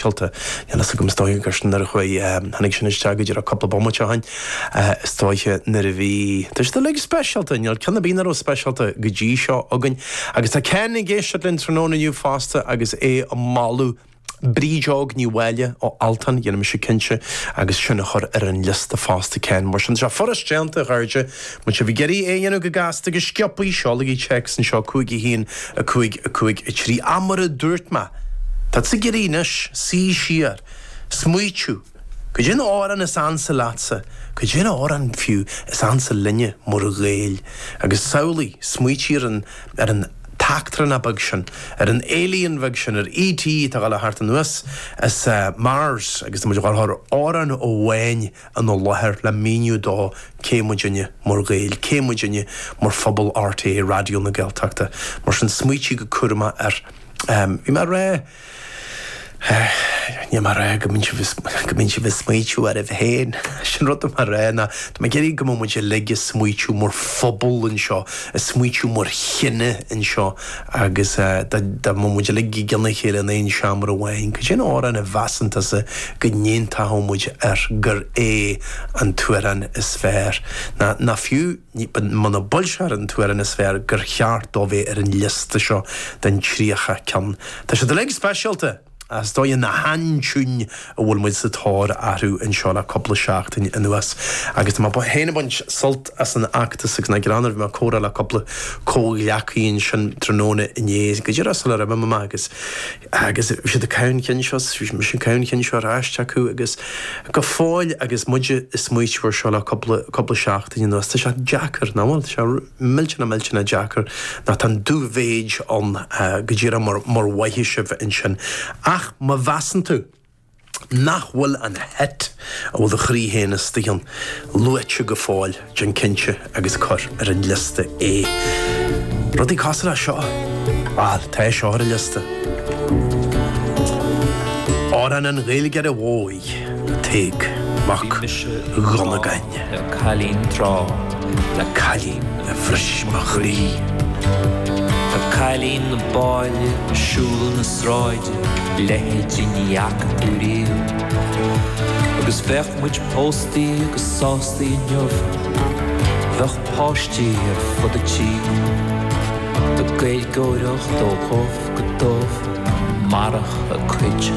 ceolta. Níl a fhios agam, is dóiche gur sin nuair a chuaigh, tháinig sin isteach go díreach cúpla bomaite ó shin, is dóiche nuair a bhí, tá siad uilig speisialta, níl ceann ar bith nach raibh speisialta go dtí seo againn. Agus tá Ken ag éisteacht linn tráthnóna inniu fosta agus é a mholadh Bríd Óg Ní Mháille ó Altan, déanfaidh mise cinnte agus sin a chur ar an liosta fosta Ken, mar sin tá sé furast déanta a chairde. Má tá sibh ag iarraidh é a dhéanamh go gasta, go sciobtha, seolaigí téacs anseo, 5 1 5 5 3 Ach mar a dúirt mé, tá tú ag iarraidh anois suí siar, smaoitiú. Caidé an t-amhrán is ansa leatsa, caidé an t-amhrán, fiú, is ansa linne, mar Ghaeil. Agus samhlaigh, smaoitigh ar an, ar an t-eachtrán beag sin, ar an alien bheag sin, ar ET atá a' gabháil thart anuas as Mars agus tá muid a' gabháil a chur amhrán amháin, ina láthair le míniú dó cé muidne mar Ghaeil, cé muidne mar phobal RTÉ Raidió na Gaeltachta. Mar sin, smaoitigh go cúramach air. Bhí mé ag rá. Níl mé ag rá go mbíonn sibh, go mbíonn sibh ag smaoitiú oraibh féin. 'Sé an rud atá mé ag rá ná, tá mé ag iarraidh go mbeadh muid uilig ag smaoitiú mar phobal anseo, ag smaoitiú mar chine anseo. agus dá mbeadh muid uilig i gcionn a chéile in aon seomra amháin, cad é an t-amhrán a mheasann tusa go n-aontódh muid air gur é an t-amhrán is fearr, ná, ná fiú, munab é, b'fhéidir, an t-amhrán is fearr, gur cheart dó bheith ar an liosta seo den 30 ceann? Tá siad uilig speisialta! Is dóiche na haintiúin a bhfuil muid sa tóir orthu anseo le cúpla seachtain anuas, agus tá mé féin ag baint sult as an fheachtas agus an ghreann. Bhí mé ag comhrá le cúpla comhghleacaí ansin tráthnóna inné, go díreach sula raibh mé amach, agus agus bhí siad ag caitheamh an chinn seo, bhí mise ag caitheamh an chinn seo ar ais acu, agus go fóill agus muid ag smaoiteamh ar seo le cúpla cúpla seachtain anuas, tá sé deacair, nach bhfuil? Tá sé millteanach, millteanach deacair, nó tá an dúmhéid ann go díreach mar mhothaigh sibh ansin. Ach má mheasann tú nach bhfuil an hit a bhfuil do chroí féin is do cheann luaite go fóill, déan cinnte agus cuir ar an liosta é. Rudaí cosúil leis seo? Bhal, tá seo ar an liosta. Amhrán an Ghaeilgeora Mhóir. Tadhg Mac Dhonnagáin. Le cailín tráth, cailín a bhris mo chroí. An cailín ab áille a shiúladh na sráide, a leithéidí ní fhaca tú riamh. Agus bheadh muid pósta agus sásta inniu, bheadh páistí ar fud an tí. Ag Gaeilgeoireacht ó dhubh go dubh, marach a cuid.